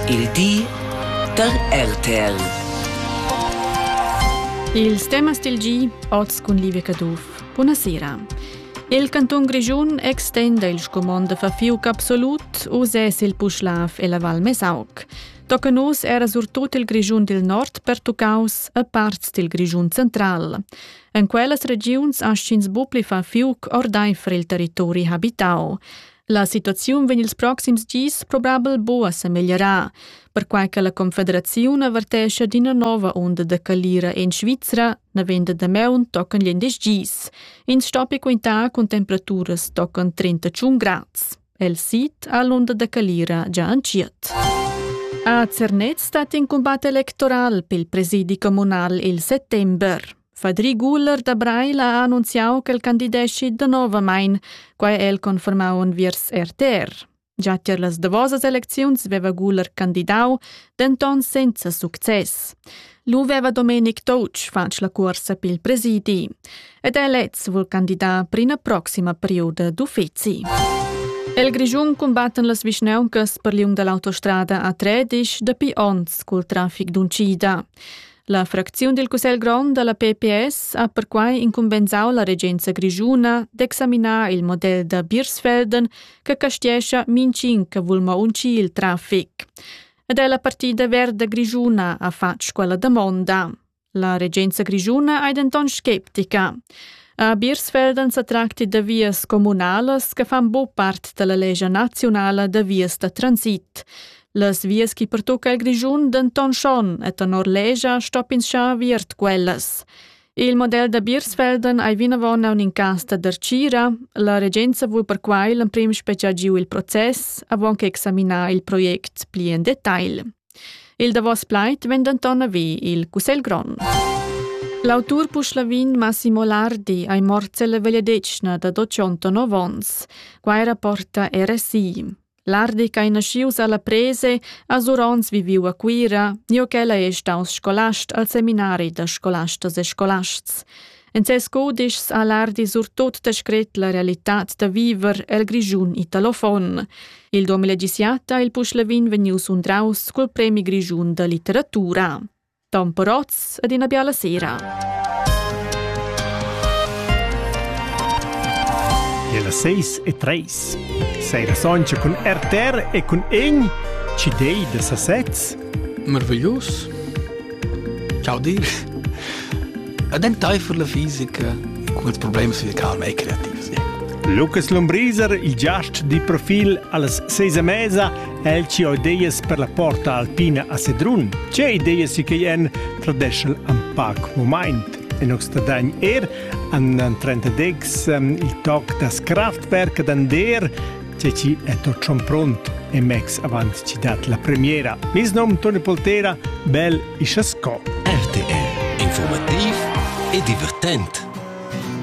Il di da RTL. Ils temas del gi, oz cun Livia Caduff. Buonasera. Il canton Grischun extenda il scumond da fafiuc absolut uses il Puschlav e la Val Mesauc. Tocca nus era surtut il Grischun del Nord pertuccaus a parts del Grischun central. En quellas regiuns aschins bu pli fafiuc ordaifer il territori habitau. La situaziun vegn ils proxims gis probabel buca sa meglierar, perquai che la Confederaziun avertescha d'ina nova onda da calira en Svizra navend da maun tocan gl'indisch gis. Ins stoppi quintar cun temperaturas tocan 31 grads. El sit ha l'onda da calira già entschiet. A Zernez stat in combat electoral pel presidi comunal il settember. Fadri Guller da Breil ha annunziau ch'el candideschi danovamain, quai è el confermau enviers RTR. Già tier las davosas elecziuns veva Guller candidau, denton senza success. Lu veva Domenic Touch fatg la cuorsa pil presidi ed el lez vul candidar per ina proxima perioda d'uffeci. El Grischun cumbattan las vischnauncas per liung dall'autostrada A13 dapi onns cul trafic d'uncida. La fracziun dil Cussegl grond dalla PPS ha perquai incumbensau la regenza grischuna d'examinar il model da Birsfelden che castiescha mincin che vul mo uncir il traffic. Ed è la partida verda grischuna ha fatg quella damonda. La regenza grischuna è denton sceptica. A Birsfelden sa tracti da vias comunalas che fan buc part dalla lescha nazionala da vias da transit. Las vias che pertucca il Grischun denton schon e tenor legia stoppinschar aviert quellas. Il model da Birsfelden ei vinavon aun in cas da dercira. La regenza vul perquai l'emprim speciar giu il process avon che examinar il project pli en detail. Il davos plaid vegn denton avi il Cussegl grond. L'autur puschlavin Massimo Lardi ei morts ella vegliadetgna da 209 ons. Quai rapporta RSI. L'ardic ei naschius alla prese, a Surons viviu a Cuira, nio ch'ella ei staus scolast al seminari da scolastas e scolasts. En ses cudischs ha l'ardi surtut descret la realitad da viver el Grischun italofon. Il 2017 ha il Puschlevin vegniu sundraus cul premi grischun da litteratura. Tamperots ed ina biala sera. E las seis e treis. Seira soncha cun RTR e cun egn, ci dei da sasez. Marveglius. Ciao dir. Ad en teifel la fisica con ils problems fisicali e creativi. Lucas Lombriser, il giast di profil alla seisa mesa El ci ho ideas per la porta alpina a Sedrun. Ce ideas si che en tradeschel an pac moment. In Oxtadagn er an 30 il toc das Kraftwerk d'Ander, ce ci è tot schon pront e mex avant ci dat la premiera. Mis nom Toni Poltera, bel isasco. RTR, informativ e divertent.